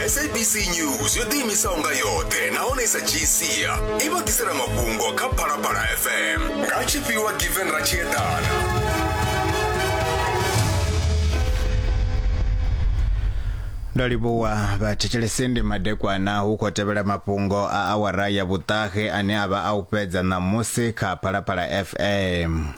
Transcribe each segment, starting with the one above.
sabc news yo ḓiimisaho nga yoṱhe nahone i sa dzhii sia i vha ḓisela mafhungo kha phalaphala fm nga tshifhiwa given ra tshi eḓana ndo livhuwa vhathetshelesi ndi madekwana hu khou tevhela mafhungo a awara ya vhuṱahe ane a vha a u fhedza ṋamusi kha phalaphala fm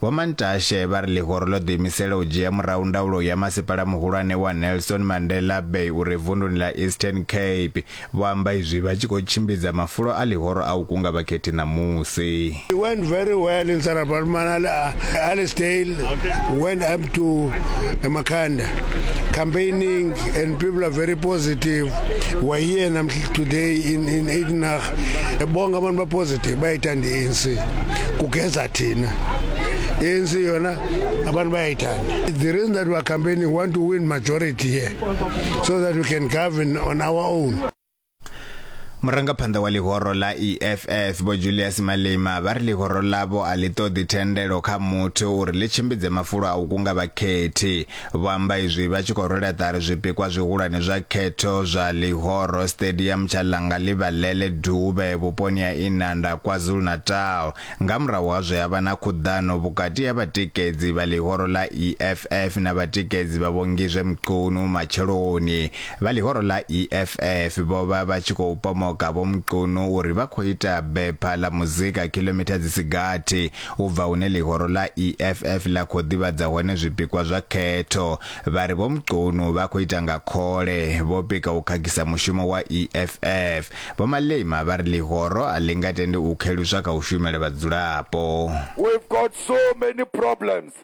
Vho Mantashe vha ri ḽihoro ḽo ḓiimisela u dzhia murahu ndaulo ya masipala muhulwane wa Nelson Mandela Bay u re vunduni ḽa Eastern Cape. Vho amba izwi vha tshi khou tshimbidza mafulo a ḽihoro a u kunga vhakhethi ṋamusi. It went very well in Sarah Baartman, Allesdale, went up to Makhanda, campaigning, and people are very positive. We're here today in, in Ignach. bonke abantu bapositive bayayithanda i-anc kugeza thina ANC yona abantu bayayithanda the reason that we are campaigning want to win majority here so that we can govern on our own murangaphanḓa wa ḽihoro ḽa eff vho julius malima vha ri ḽihoro ḽavho a ḽi ṱoḓi thendelo kha muthu uri ḽi tshimbidze mafulo a u kunga vhakhethi Vho amba izwi vha tshi khou rwela ṱari zwipikwa zwihulwane zwa khetho zwa Ḽihoro Stadium tsha Ḽangaḽivhalele Dube vhuponi ha Inanda, KwaZulu-Natal, nga murahu ha zwe ha vha na khuḓano vhukati ha vhatikedzi vha ḽihoro ḽa EFF na vhatikedzi vha Vho Ngizwe Mchunu matsheloni. Vha ḽihoro ḽa EFF vho vha vha tshi khou pomoka Vho Mchunu uri vha khou ita bepha ḽa muzika khiḽomitha dzi si gathi u bva hune ḽihoro ḽa EFF ḽa khou ḓivhadza hone zwipikwa zwa khetho, vha ri Vho Mchunu vha khou ita nga khole, vho pika u khakhisa mushumo wa EFF. Vho Malema vha ri ḽihoro a ḽi nga tendi u kheluswa kha u shumela vhadzulapo. We've got so many problems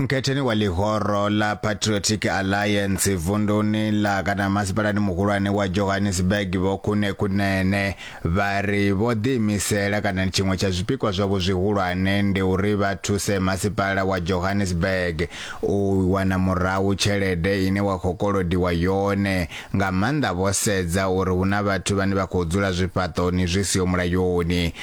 mkhetheni wa ḽihoro ḽa patriotic alliance vunduni ḽa kana masipalani muhulwane wa johannesburg vho khune khunene vha ri vho ḓiimisela kana tshiṅwe tsha zwipikwa zwavho zwihulwane ndi uri vha thuse masipala wa johannesburg u wana murahu tshelede ine wa khou kolodiwa yone nga maanḓa vho sedza uri hu na vhathu vhane vha khou dzula zwifhaṱoni zwi siho mulayoni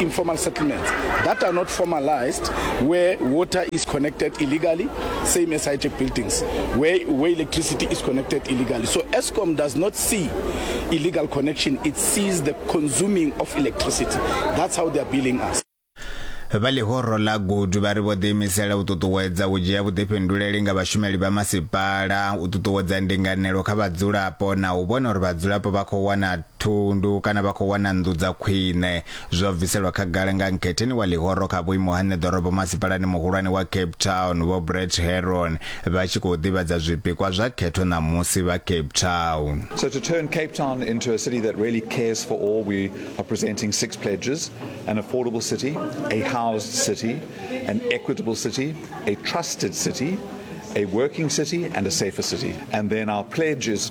informal settlements that are not formalized where water is connected illegally same as high-tech buildings where, where electricity is connected illegally so escom does not see illegal connection it sees the consuming of electricity that's how they are billing us vha ḽihoro ḽa gudu vha ri vho ḓiimisela u ṱuṱuwedza u dzhia vhuḓifhinduleli nga vhashumeli vha masipala u ṱuṱuwedza ndinganelo kha vhadzulapo na u vhona uri vhadzulapo vha khou wana thundu kana vha khou wana nnḓu dza khwine. Zwo bviselwa khagala nga nkhetheni wa ḽihoro kha vhuimo ha ṋeḓorobo masipalani muhulwane wa Cape Town, Vho Brett Herron, vha tshi khou ḓivhadza zwipikwa zwa khetho ṋamusi vha Cape Town. So to turn Cape Town into a city that really cares for all, we are presenting six pledges, an affordable city, a housed city, an equitable city, a trusted city, a working city and a safer city. And then our pledge is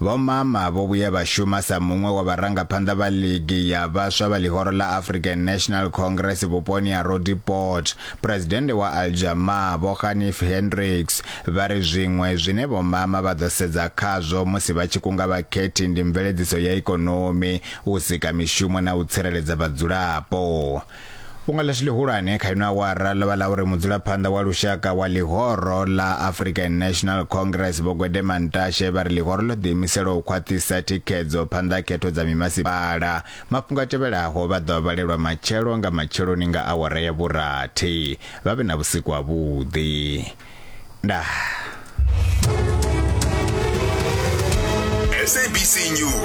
Vho Mama vho vhuya vha shuma sa muṅwe wa vharangaphanḓa vha ligi ya vhaswa vha ḽihoro ḽa African National Congress vhuponi ha Roodepoort. Phresidennde wa Aljamaa, Vho Ghanif Hendricks, vha ri zwiṅwe zwine Vho Mama vha ḓo sedza khazwo musi vha tshi kunga vhakhethi ndi mveledziso ya ikonomi, u sika mishumo na u tsireledza vhadzulapo. Fhungo ḽashu ḽihulwane kha ino awara ḽo vha ḽa uri mudzulaphanḓa wa lushaka wa ḽihoro ḽa African National Congress Vho Gwede Mantashe vha ri ḽihoro ḽo ḓiimisela u khwaṱhisa thikhedzo phanḓa ha khetho dza mimasipala. Mafhungo a tevhelaho vha ḓo a vhalelwa matshelo nga matsheloni nga awara ya vhurathi. Vha vhe na vhusiku ha vhuḓi. Ndaa. SABC News.